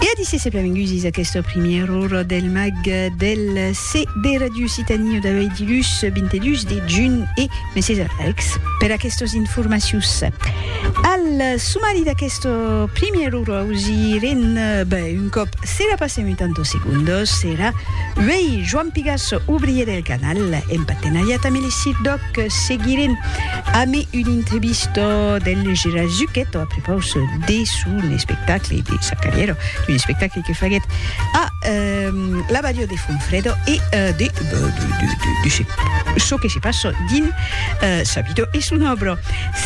E a disse se plavengusis aqueste primièr ora del mag del CB Radio Citani o d'avei dilhus 22 de junh e Messies Alex per aquestos informacius. Al sumari d'aqueste primièr ora ausirem ben un còp se la passem 80 segundos era uei Joan Pigasso, obrier del canal en partenariat amb Elisir Doc, seguirem Amé un intrebisto del Gerard Zucchetto a prepaus de son espectacle, de sa carrièra, un espectacle que faguèt a la Badiò de Fonfrèdo e de çò que se passa dins sa vida e son òbra.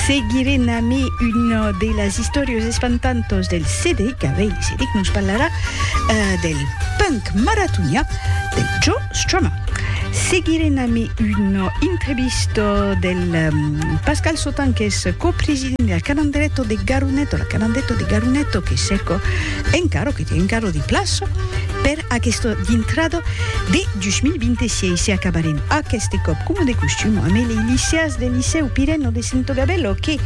Seguirem amé una de las istòrias espantantas del Cedric Abell. Cedric nos parlarà del punk maratonià. Jo, Strummer. Seguirem ami una entrevista del Pascal Sautin, qu'es copresident de la Calandreto de Garuneto, la Calandreto de Garuneto que cerco encara, que tien encara de plaça per aquesta dintrada de 2026. E acabarem aqueste còp, coma de costum, amé lei liceas del Licèu Pireno de Sento Gabello que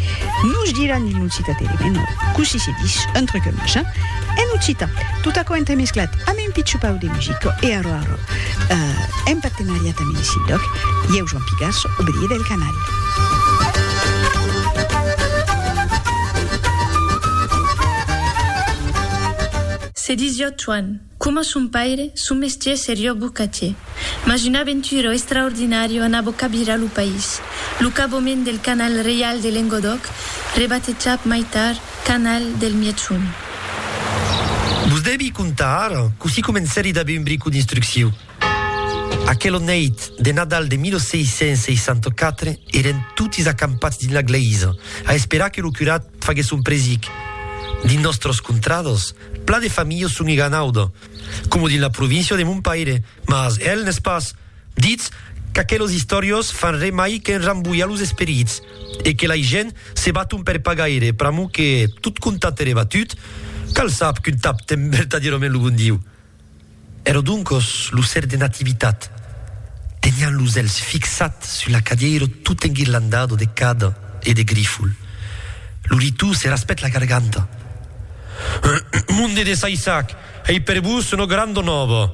nos diràn il non citaterem, e non, cossí se dis, un truc en machin. En occitan, tot aquò entremesclat amb un pitchupau de musica e arrò arrò, en partenariat amb un sindoc, ieu Joan Pigasso, obrier del canal. Se disiá Joan, coma son paire, son mestier seriá bocatier. Mas una aventura extraordinària anava cabirar lo país, lo cabament del canal reial de Lengodòc, rebatejat mai tard, Canal del Mièchon. Vos devi contar ara cossí comencèri d'aver un bric o d'instrucciu. Aquela nèit de Nadal de 1664 eren totis acampats dins la glèisa a esperar que lo curat faguèsse son presic. Dins nòstras contradas, plan de familhas son eganauda, coma dins la província de mon paire, mas el n'es pas. Ditz qu'aquelos istoriós fan re mai qu'en rambolhar los esperits e que lai gent se baton per pas gaire pr'amor que tot contat ere batut, cal sap qu'un tap ten vertadierament lo bon Diu. Ero doncos lo ser de Nativitat, tenián los elhs fixat sus la cadièiro tot enguirlandado de cada e de grifol. Lo ritou se raspèt la garganta. Monde de Saissac! Ei per vos una granda nòva.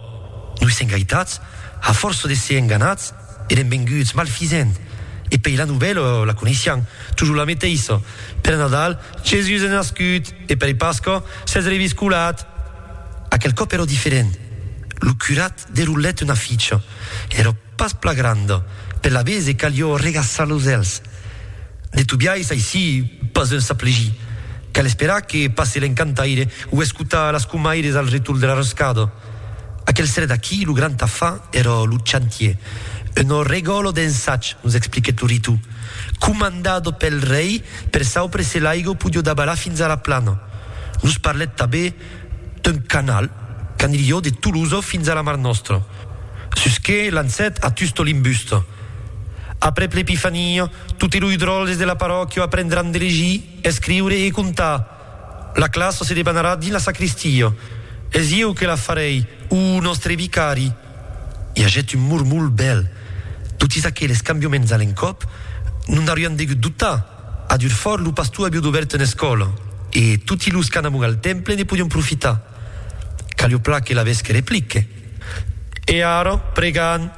Noi sèm gaitats, a fòrça de ser enganats, èrem venguts malfisent, e pei la novèla la coneissián, tujor la meteissa, per Nadal, Jesús es nascut, e per Pasca, s'es reviscolat. Aquel còp èra diferent. Lo curat derolèt una ficha. Èra. Pas pla granda, per la bese calió regaçar los èlhs. De tot biais aicí pas un s'aplegir. Cal esperar que passe l'encantaire o escotar las comaires al retorn de la roscada. Aquel serè d'aquí lo grand afar èra lo chantier, un ò regòlo d'ensatj, nos expliquèt lo Ritu, comandado pel rei per saupre se l'aigo podió dabalar fins a la plana. Nos parlèt tabé d'un canal qu'anilhó de Tolosa fins a la Mar Nòstra, sus que lancèt a Tusto l'imbusta. Aprèp l'Epifania, totes los dròlles de la parròquia aprendràn de legir, escriure e contar. La classa se debanarà dins la sacristia. Es ieu que la farèi, o nòstre vicari? I agèt un murmolh bèl. Totes aqueles cambiaments a l'encòp, non n'aurián degut dubtar! A Durfòrt, lo pastor aviá dobèrt una escòla e toti los qu'anamon al temple ne podián profitar. Callioplà que laves que replique. E ara, pregam,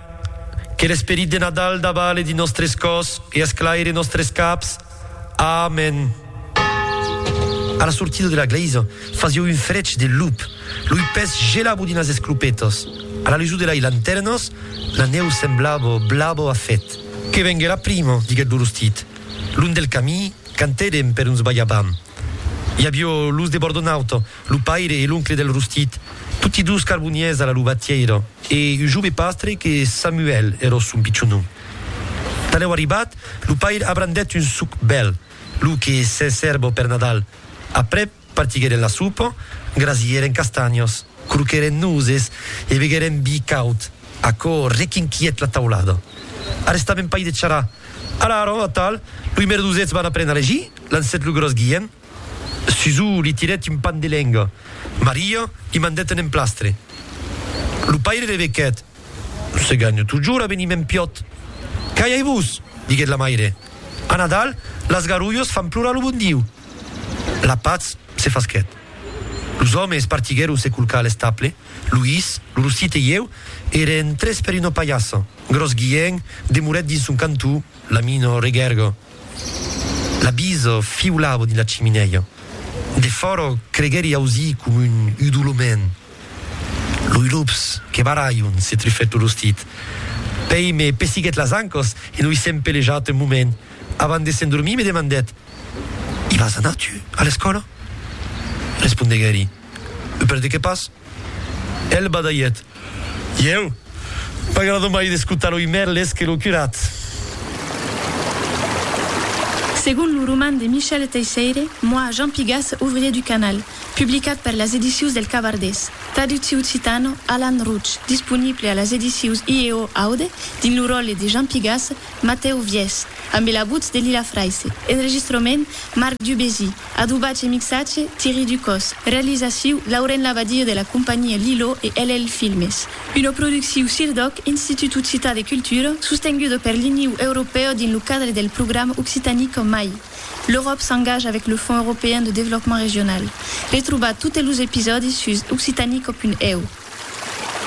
que l'esperit de Nadal davale dins nòstres còrs e esclaire nòstres caps. Amèn. A la sortida de la glèisa, fasiá un frech de lup, lo ipè's gelava dins las esclopetas. A la lusor de lai lantèrnas, la nèu semblava blava a fèt. Que vengue la prima, diguèt lo rostit. Long del camí, cantèdem per uns balhabam. I avió los de Bordonauta, lo paire e l'oncle del rostit, toti dos carbonièrs a la lubatièira, e un jove pastre que Samuèl era son pichon nom. Talèu arribat, lo paire abrandèt un suc bèl, lo que s'es hèrba per Nadal, aprèp, Partiguèren la sopa, grasièren castanhos, croquèren noses e beguèren vi caud. Aquò requinquièt la taulada. Arrestaven pas de charrar. Ara, ara, atal, loi merdosets van aprèn a legir, lancèt lo gròs Guilhèm. Susò li tirèt un pan de lenga. Maria li mandèt un emplastre. Lo paire rebequèt, Se ganho totjorn a venir mèn piòt. Calhai-vos! diguèt la maire. A Nadal, las garulhos fan plorar lo bon Diu. La patz se fasquèt. Los òmes es partiguèron se culcar a l'estable. Luís, lo rostit e ieu èrem tres per una palhassa. Gròs Guiènh demorèt dins son cantó, la mina regèrga. La bisa fiolava dins la chiminèia. Defòra creguèri ausir coma un udolament. Loi lops que barralhon, se trufèt lo rostit. Pei me pessiguèt las ancas e noi s'empelejat un moment. Avant de s'endormir me demandèt, I vas anar, tu, a l'escòla? Respondeguèri, E per de qué pas? Ell badalhèt, Ieu? M'agrada mai d'escotar loi Merles que lo curat! Segon lo roman de Michel Teisseire, Moi, Jean Pigas, ouvrier du canal, publicat per las edicius del Cavardés, traducciu occitano, Alan Rouch, disponible a las edicius IEO Aude dins lo ròtle de Jean Pigas, Matèu Vièch, ambe la votz de Lila Fraisse. Enregistrament, Marc Dubézy. Adobatge e mixatge, Thierry Ducos. Realizaciu, Lauren Labadie de la companhia Lilo e LL Filmes. Una producciu CIRDOC, Institut Occitan de Cultura, sostenguda per l'Iniu Europèu dins lo cadre del programa Occitanic en mai, L'Europe s'engage avec le Fonds Européen de Développement Régional. Retrobatz totes los episòdis sus occitanico.eu.